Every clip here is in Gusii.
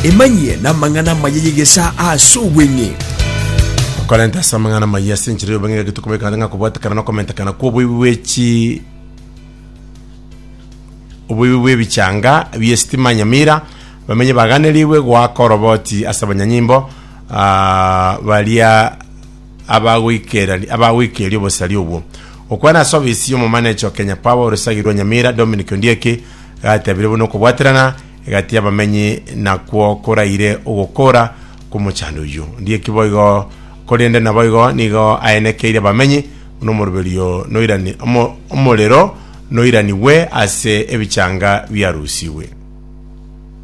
Emanyie n'amang'ana amaya y'egesaa ase obweng'e. Okorenta ase amang'ana amaya ase enchera y'obeng'e egaki tokobeka ng'a kobwatekana na okomentekana kw'oboibi bw'echi oboibi bw'ebichanga bi'esitima nyamira abamenyi baganerigwe goaka oroboti ase abanyanyimbo ah, baria abagoikerani- abagoikeria obosari obwo. Gokwana ase ofisi y'omomanecha o Kenya Power orosagi rwa Nyamira, Dominic Ondieki, gatebirie buna okobwaterana egati y'abamenyi nakwo koraire ogokora kw'omochando oyio. Ndie ki boigo, korende naboigo nigo aenekeire abamenyi, buna omoroberio noirani, omo, omorero noiranigwe ase ebichanga biarusigwe.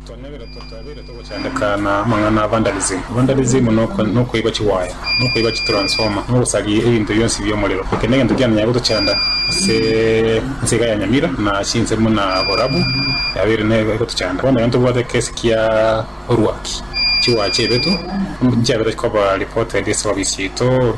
Twanebire totabeire togochandeka na amang'ana a vandalism. Vandalism nokoiba chiwaya, nokoiba chitransformer, nogosaria ebinto bionsi biomorero. Eke negento kianonyare gotochanda ase ense iga ya Nyamira na ase ense buna Borabu yabeire nero egotochanda. Bono ekero ntobwate ekesi kia orwaki, chiwaya chiaibetwe, nchiabera chikoba reported ase ofisi yaito.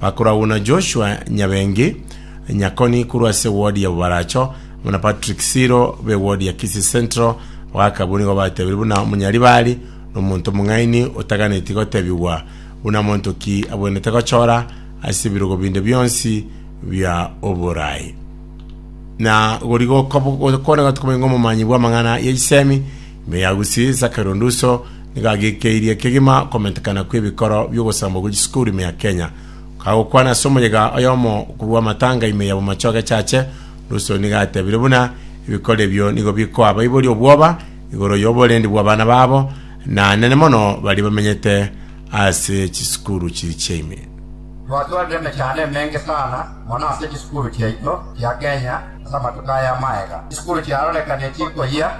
Bakorwagwa na Joshua Nyabengi, Nyakoni korwa ase ewodi ya Bobaracho, amo na Patrick Siro b'ewodi ya Kisii Central, bagaka abwo nigo batebirie buna omonyaribari nomonto omong'aini otaganeti gotebigwa buna monto ki abwenerete gochora ase ebirogo binde bionsi bia oborai. Na gori gokone gotokobonye ng'omomanyi bw'amang'ana y'echisemi, Me yagusie Zachary Onduso nigo agekeirie kegima okomentekana kw'ebikoro bi'ogosambwa gwe chisukuru ime ya Kenya. Kagokwana ase omoyega oyomo korwa amatanga ime ya Bomacho Agachache, Onduso nigo atebire buna ebikoro ebio nigo bikoa abaibori obwoba igoro y'oborendi bw'abana babo, na nene mono baria bamenyete ase chisukuru chiria chia ime. Twatwarire emechando emenge sana mono ase chisukuru chiaito chia Kenya ase amatuko aya amagega. Chisukuru chiarorekanirie chikoyia.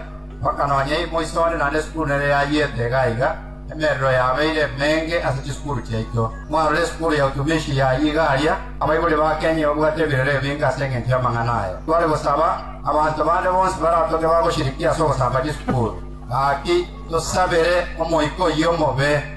mpaka nonya imo iso ore naende esukuru nere yayiete iga iga, emerero yabeire emenge ase chisukuru chiaito. Mwarore esukuru ya utumishi yayia iga aria, abaibori ba Kenya babwate ebirero ebinge ase engencho y'amang'ana aya. Tware gosaba abanto bande bonsi baratoke bagoshirikia ase ogosamba chisukuru. Gaki, tosabere Omoika oyio omobe.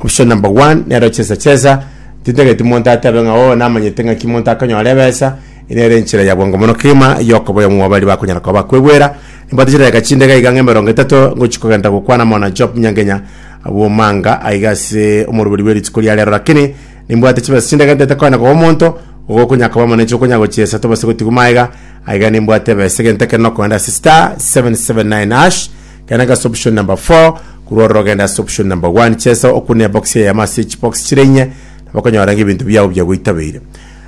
Option number one nero chesa chesa. Tintageti monto atebe ng'a oo namanyete ng'aki monto akonyora ebesa, eye nere enchera ya bwango mono kegima ya okoboyia ng'o baria bakonyara koba bakwegwera. Nimbwate chidakika chinde iga iga ng'a emerongo etato ngochia kogenda gokwana mono na Job Nyangenya bw'omanga aiga ase omoruberi bwe rituko ria rero lakini nimbwate chibesa chinde iga ntaete koenda koba omonto ogokonyara koba mono inche okonyara gochiesa tobase gotigwa magega aiga nimbwate ebesa egento ekero nokoenda ase star 779 hash Kenanga ase option number four, korwa ororo genda ase option number one, chesa okune ebox eyemo ase echibox chire inye, nabo okonyora ng'a ebinto biago biagoitabeire.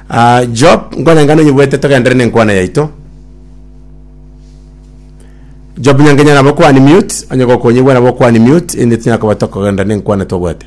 Ah, Job, nkwane enga nonyebuete togenderere ne enkwana yaito. Job Nyangenya nabo okounmute, onye gokonyigwa nabo okounmute, erinde tinyara koba tokogenderera ne enkwana twabwate.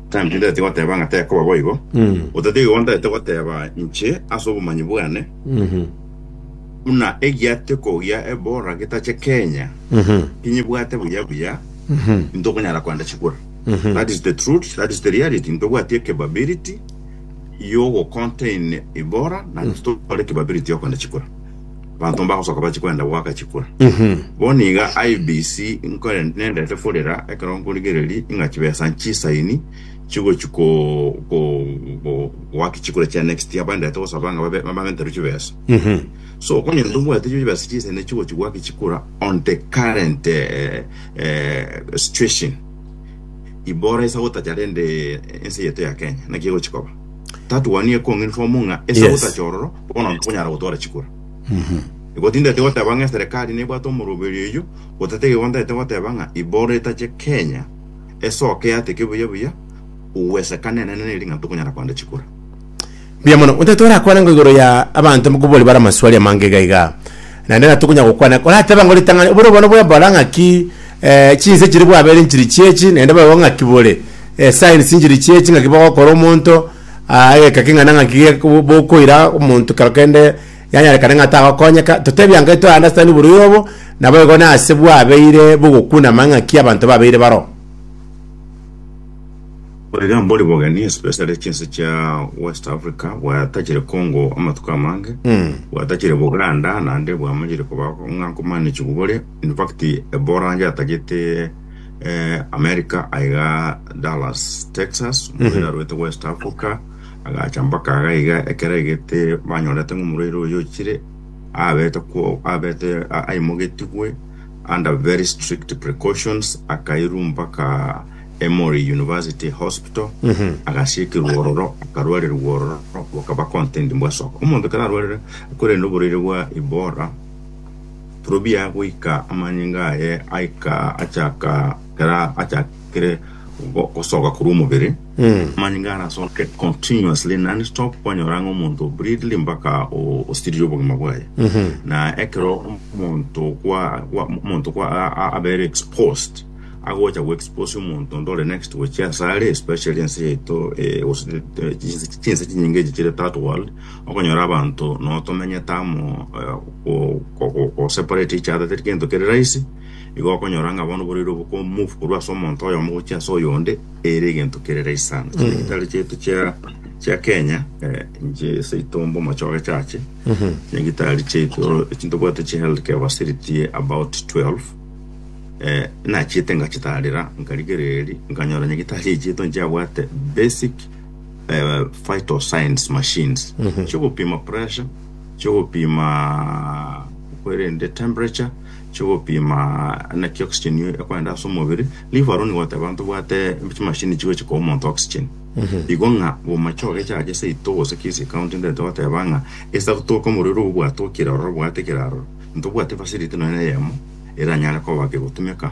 Timotheo ndete goteba ng'a tekoba boigo. Otatiga igo ndete goteba inche ase obomanyi bwane, buna egiateko gia Ebola getache Kenya, tinyebwate buya buya intokonyara koenda chikura. That is the truth, that is the reality. Ntobwati ecapability yogocontain Ebola na intitore capability yokoenda chikura. Abanto mbagosoka bachia kwenda goaka chikura. Bono nigo IBC nkore nendete korera ekero nkorigereria ing'a chibesa nchisaini chigochia ko- ko- ko- goaka chikura chia next year bandete gosaba ng'a babe- babenterwe chibesa. So onye ntombwate chibesa chisaini echio chigochia goaka chikura on the current eh, eh, situation ibora isa gotacha rende ense yaito ya Kenya naki egochia koba. Tatuwania ekong'inform ng'a esa Yes. gotacha ororo Bono ntonyara gotwara chikura. Igo tindete goteba ng'a eserekari nebwate omoroberi oyio, gotatiga igo ntagete goteba ng'a ibororo etache Kenya esoke yateke buya buya, ugwesekana enene neri ng'a ntokonyara koenda chikura. Mbuya mono. Otagete orakwane ng'a igoro ya abanto nkobua ore bare amaswali amange iga iga. Naende na tokonya gokwana, orateba ng'a ritang'ani oboro bono bwebora ng'aki eh, chinse chiri bwabere nchiri chiechi, naende boigo ng'aki bore eh, signs nchiri chiechi ng'aki bogokora omonto, Aa egeka king'ana ng'aki ge- bo- bokoira omonto kero kende yanyarekane ng'a tagokonyeka, totebie ang'e to understand oborwaire obo, naboigo nase bwabeire bogokuna amang'aki abanto babeire baro. Bwaiga mbori bogeni especially chinse chia West Africa bwatachire Congo amatuko amange bwatachire Buganda naende bwamanyire koba ng'a nkomanage bore in fact Ebola yatagete eh, america aiga dallas texas omoira arwete west africa agacha mpaka aga iga ekero egete banyorete ng'a omoraire oyo ochire abete kwo abete a- aimogetigwe under very strict precautions akairu mpaka emory university hospital agasiekirwa ororo akarwarerwa ororo bakaba content mbwa soka omonto kera arwarire korende oboraire bwa ibora Turobia goika amanyinga aye aika achaka era achakire go- gosoka korwa omobere amanyinga arasoke continuously non stop kwanyora ng'a omonto breedly mpaka o- osirire obogima bwaye na ekero omonto kwa kwa- omonto kwa a- a- abere exposed agocha go expose omonto onde ore next gochia asare especially ense yaito eh, gose eh, chinse chinse chinyinge echi chire third world Okonyora abanto notomenyete amo goseparate each other teri gento kere rahisi, igo okonyora ng'a bono boreire oboko move korwa ase omonto oyomo gochia ase oyonde ere egento kere rahisi sana. Chinyagetari chiaito chia chia Kenya eh, inche ase itombe omochoge chache chinyagetari chiaito chintobwate chi health care facility about 12 eh, nachiete ngachitaarera nkarigereria nkanyora nyagetari chiaito nchiabwate basic eh, vital signs machines chigopima pressure chigopima kwerende temperature chigopima naki oxygen yo ekwenda ase omobere live aroni goteba ntobwate chimashini chigochi koa omonto oxygen igo ng'a bomache ogechache seito gose kesi ekaunti ntaete goteba ng'a ase agotoka omorero obo bwatokire ororo bwate kera aroro ntobwati facility nonya eyemo eranyare koba kegotumeka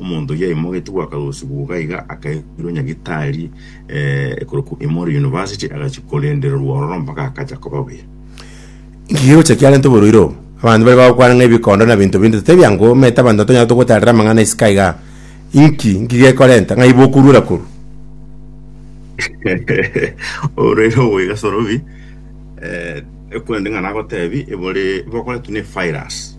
Omonto oyio yaimogetie gwakarosigwa boka iga akairwa nyagitari eh, ekorokwa Emory University, agachia korendererwa ororo mpaka akacha koba buya. Nki gocha kiarenta oborwaire obo? Abanto bare bagokwana ng'a ebikondo na binto binde totari biango, omanyete abanto tonyara togotarera amang'ana isiko iga. Inki? Nki gekorenta? Ng'ai bokorwera korwa? oborwaire obo iga sorobi eh, ekorende ng'a nagotebi ebore bokoretwa ne virus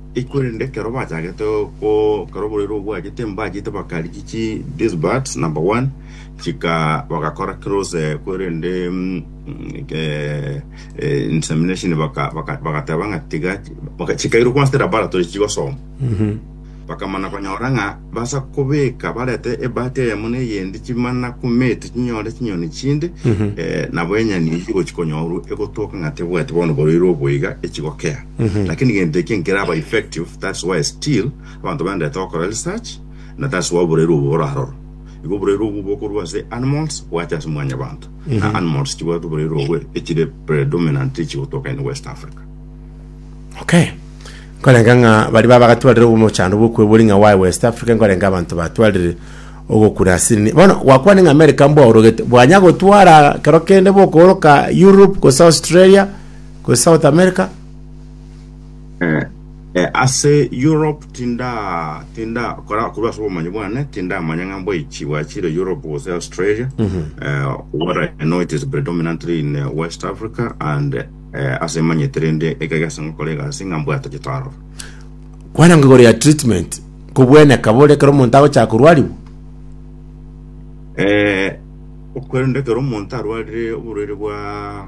Korende ekero bachagete gokora oborwaire obwo bwachete, mbachete bakarigia chi these birds, number one, chika bagakora close eh, korende mm, eh, eh, insemination baka- baka- bagateba ng'a tiga baka- chikairwa kwanse laboratory chigosoma bakamana konyora ng'a basa kobeka barete ebati eyemo na eyendi chimana kumeti chinyore chinyoni chinde eh, nabo enyani echi gochi konyorwa egotoka ng'a tebwati bono oborwaire obo iga echigokea Lakini gento eke nkeraba effective that's why still abanto baenderete gokora research na that's why oborairu obo boraroro. Igo oborairu obwo bokorwa ase animals bwache ase mwanyabanto na animals chibwate oborairu obwe echire predominantly chigotoka in West Africa. Okay. Nkorenga ng'a baria baba bagatwarire omochando bw'okwebori ng'a why West Africa nkorenga abanto batwarire ogokuna asini. Bono gwakwane ng'a America mbwaorogete bwanya gotwara kero kende bokooroka Europe gose Australia Gose South America? Eh, eh, ase Europe tinda tinda kora korwa ase obomanyi bwane tindamanya ng'a mboichi bwachire Europe gose Australia eh, what I know it is predominantly in eh, West Africa and eh, ase manyete rende ekege ase ngokora egasi ng'a mbwate chitaro Kwana ngigoro ya treatment kobweneka bore kero omonto agochaka korwariwa. eh, okorende kero omonto arwarire oborwaire bwa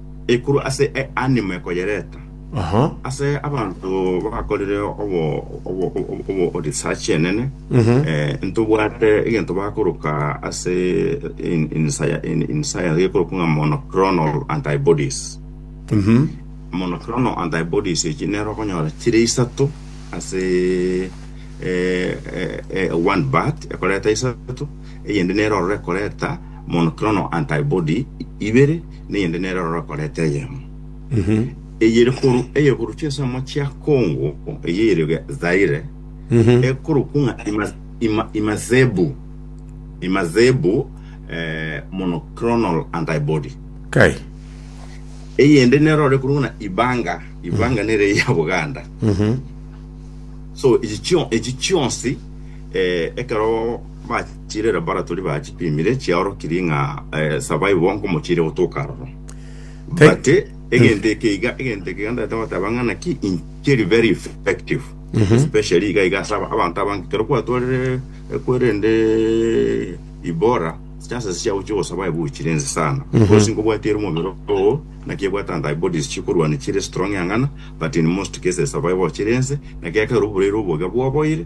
Ekuru ase eanima ekoyereta. Aha. Ase abanto bakorire obo obo obo- obo research enene eh, ntobwate egento bakoroka ase in, in, sci- in, in science gekorokwa ng'a monoclonal antibodies Mhm. monoclonal antibodies echi nero okonyora chire isato ase eh, eh, eh, one bat ekoreta isato eyende nero orore ekoreta monoclonal antibody ibere neyende nere ororo akorete eyemo. Eye ere koru eyegoro chinsemo chia Congo, eye ere ge- Zaire, ekorokwa ng'a Ima- Ima- Imazebu. Imazebu, eh, monoclonal antibody. Kai. Eyende nere ore koru ng'a Ibanga. Ibanga nere eye ya Buganda. So, echi chio- echi chionsi, eh, ekero Bachire laboratory bachipimire chiaorokirie ng'a eh, survive bonko mochire gotoka aroro Thank- but eh, egento eke iga egento eke iga ndagete goteba ng'a naki inchiri very effective especially iga iga ase aba- abanto abange kero kwatwarire ekwerende ibora chances chiao chiogosurvive gochire ense sana because nkobwati ere omobere oo naki ebwate antibodies chikorwania chire strong ang'ana but in most cases survive ochire ense naki ekero oburere oboga bwaboire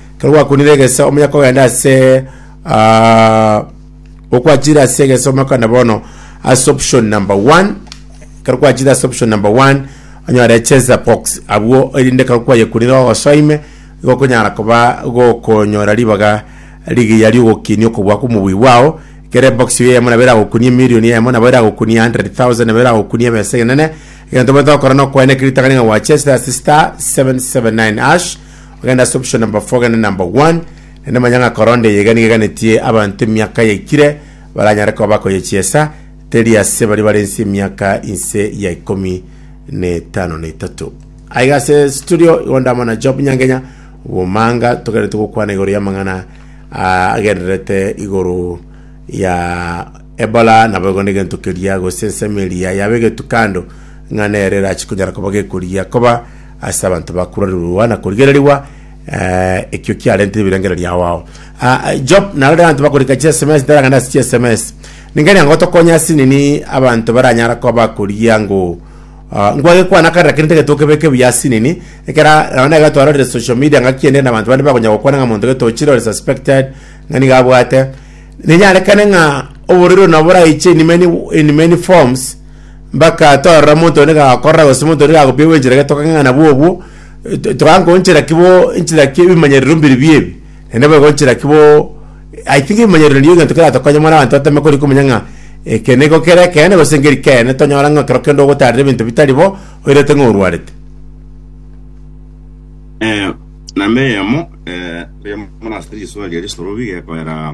Kero gwakunire egeso omuya kogenda ase ah, okwachire ase egeso omuya kogenda bono ase option number 1 kero kwachire ase option number 1 onyore cheza box abwo erinde kero kwayekunire ogosoime igo okonyara koba gokonyora ribaga rigiya riogokinia okobua kw'omobui bwao kere ebox eye yamo nabo eragokunia emilioni eyemo nabo eragokunia 100,000 nabo eragokunia ebesa enene egento omonto ogokora nokoeneka ritang'ani ng'a gwachesire ase star 779 ash Egene ase option number four egene number one naende manya ng'a korona eye iga nigo eganetie abanto emiaka yaikire baranyare koba bakoyechiesa, teri ase baria bare inse emiaka inse ya ikomi na etano na etato. Aiga ase studio igo ndamo na Job Nyangenya obomanga togerete gokwana igoro y'amang'ana ah, agendererete igoro ya Ebola nabo igo negento keria gose ensemo eria yaba egetu kando ng'a nere erachikonyara koba gekorigia koba ase abanto bakurerigwa na korigererigwa, eh, ekio kiarentire ebirengererio ao ao. Ah, ah, Job narore abanto bakorika chi SMS ntaragane ase chi SMS. Ningeri ango tokonya ase nini abanto baranyara koba bakoria ngo ah, ngwage kwana kare lakini tege tokebeke buya ase nini ekera nabo nega twarorire social media ngaki ende na abanto bande bakonya gokwana ng'a monto getochire ore suspected ng'a niga abwate ninyarekane ng'a oborero nabo boraiche in many, in many forms Mbakatorora monto onde gakorora gose monto onde gakopia gwenchera gete tokang'e ng'a nabwo obwo, eh, to- tokanga gonchera ki bo nchera ki ebimanyerero mbiri bie ebi, naende boigo nchera ki bo I think ebimanyerero nabio egento keratokonye mono abanto batame kori komanya ng'a eke nigo kere ekeene gose ngeri keene tonyora ng'a ekero kende ogotarire ebinto bitari bo, oirete ng'a orwarete. Eh, namba eyemo, eh, riamorase riswali erisorobi gekoera.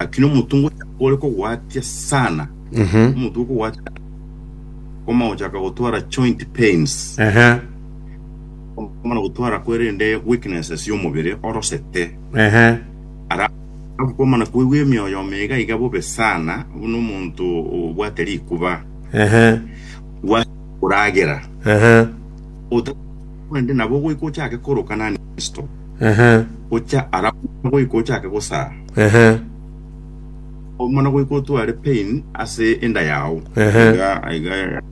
Lakini omonto ngocha ore kogwatia sana, omonto ore kogwatia koma gochaka gotwara joint pains, Ehe. omana gotwara kwerende weaknesses y'omobere orosete, Ehe. ara akomana koigwa emioyo meiga iga bobe sana, buna omonto obwate rikuba Ehe. gwa koragera Ehe. otakorende nabo goika ochake koroka nanisto Ehe, gocha ara mono goika ochake gosaa, ehe, o mono goika otware pain ase enda yao. Ehe. Iga- iga-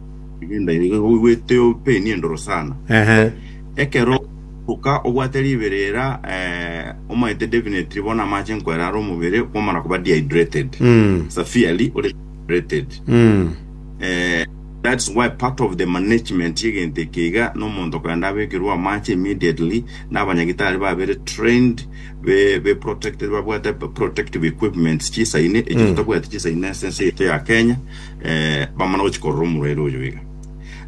iga enda yao iga oigwete o pain endoro sana. ehe, Ekero oka obwate riberera eh, omanyete definitely bono amache nkwera are omobere kwamara koba dehydrated. mm, Severely ore dehydrated. mm, Eh, that's why part of the management y'egento eke iga nomonto korende abekerwe amache immediately na abanyagitari babere trained be be protected babwate protective equipments chisaine echi Mm. totabwati chisaine ase ense yaito ya Kenya eh, bamana gochikorora omorwaire oyo iga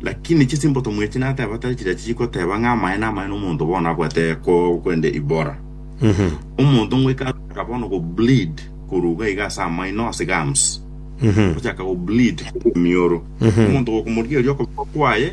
lakini chisimbotomu echi nateba tari chiria chigoteba ng'a amaye na amaye nomonto bono abwate ko- kwende ibora Mhm. omonto ngoika ataka bono go bleed koruga iga ase amaino ase gums Mhm. ochaka go bleed mioro Mhm. omonto gokomorigereria okoboko kwaye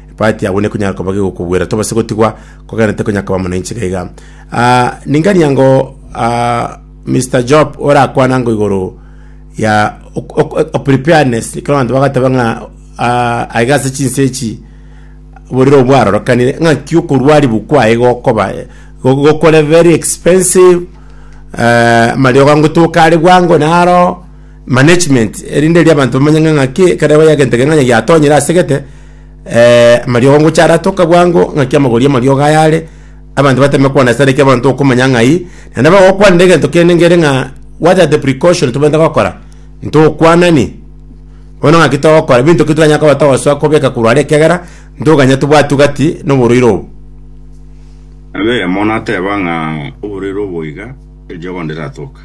Ebati agwo nekonyara koba gegokogwera, tobase gotigwa kogenete konya koba mono inche gaiga. Ah, ningania ngo ah, Mr. Job orakwana ngo igoro ya ok- ok- ok- preparedness ekero abanto bagateba ng'a ah, aiga ase chinse echi borire obwarorokanire ng'aki okorwa aribu kwaye gokoba eh, go- gokore very expensive eh, amariogo ngotoka are bwango naro management erinde eri abanto bamanye ng'a ng'aki ekero yagento kegima onye giatonyire asegete amariogo ngocha aratoka bwango ng'aki amagori amariogo aya are abanto batame kwana ase areke abanto okomanya ng'ai naende abagokwanera egento kende ngere ng'a what are the precaution tobwenerete gokora ntokwanani bono ng'aki togokora binto ki toranyare koba togosoa kobeka korwa are ekiagera ntoganya tobwati gati na oborwaire obo. Nabo eyemo nateba ng'a oborwaire obo iga erio bono ndiratoka.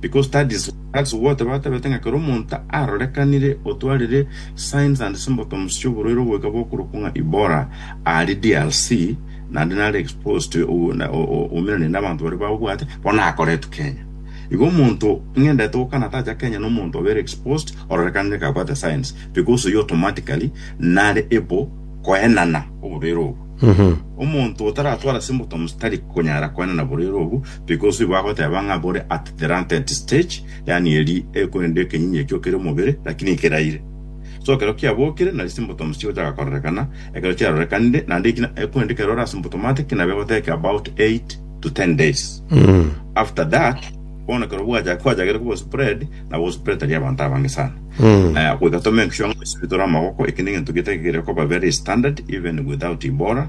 Because that is that's what batebete ng'a kera omonto arorekanire otwarire signs and symptoms chioborwaire oboika bokorokwa ng'a Ebola ari DRC naende nare exposed to o- na- o- o- ominanire n'abanto baria babwate bono akoretwe Kenya igo omonto ng'endete gokana atacha Kenya nomonto obere exposed ororekanire kabwate signs because oyio automatically nare ebo koenana oborwaire obo omonto otaratwara symptoms tari konyara koenana borwaire obo Because igo agoteba ng'a bore at the latent stage, yaani eri ekorende ekenyinyi ekio kere omobere, lakini ekeraire. So ekero kiabokire, nari symptoms chigochaka kororekana, ekero chiarorekanire, naende eki na- ekorende ekero ore asymptomatic, nabo egotake about 8 to 10 days. After that, bono ekero bwacha- kwachakire koba spread, nabo ospread tari abanto abange sana. Eh, goika tomenke sure ng'a goisibitore amagoko, eki negento getakeire koba very standard, even without Ebola,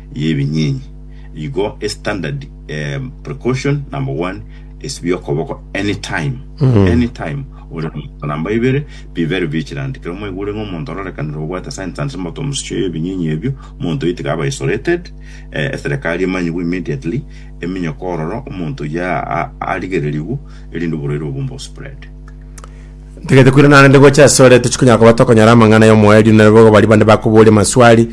y'ebinyinyi, igo estandard em, precaution number one, esibia okoboko anytime anytime ore omonto namba ibere be very vigilant kero mwaigure ng'a omonto ororekanire obwate signs and symptoms chia ebinyinyi ebio omonto oyio tiga aba isolated eh, eserekari emanyigwe immediately eminyoko ororo omonto oyio a- a- arigererigwe erinde oborwaire obwo mbospread Ntagete kwirana naende gocha ase ore tochikonyara koba tokonyora amang'ana y'omoerio nere bogo baria bande bakoboria amaswali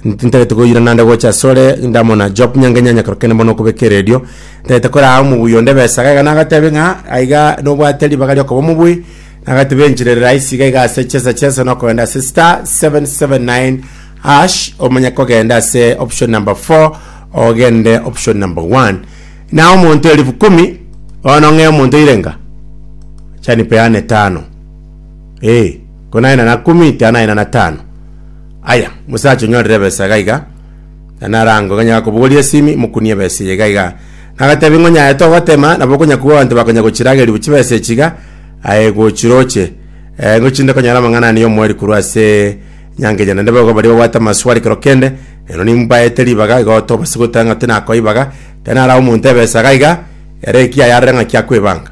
Ntintagete koyira naende gocha asore, ndamona Job nyange nyanya kero kende mono okobeka eredio. Ntagete koraa omobui onde besa iga iga nagatebie ng'a aiga nobwate ribaga riokoba omobui, nagatebia enchirere rahisi iga iga ase chesa chesa nokogenda ase star 779 hash omanye kogenda ase option number 4 ogende option number 1 na omonto elifu kumi bono ng'e omonto oire nga chanipeane tano eh konaye nana kumi tianaye nana tano Aya, mosacha onyorire ebesa iga iga, na narango ng'a nyagakobogoria esimi, mokunie ebesa eye iga iga. Nagatebie ng'a onyaye togotema, nabo okonya kobua abanto bakonya gochirageria bwe chibesa echi iga, aye gochiroche. Eh, ngochinde konyora amang'ana ane y'omoeri korwa ase nyango eye, naende boigo baria babwate amaswali ekero kende, ero nimbaete ribaga, igo tobase goteba ng'a tinakoibaga, ekero narae omonto ebesa iga iga, ere ekiayarore ng'aki akoebanga.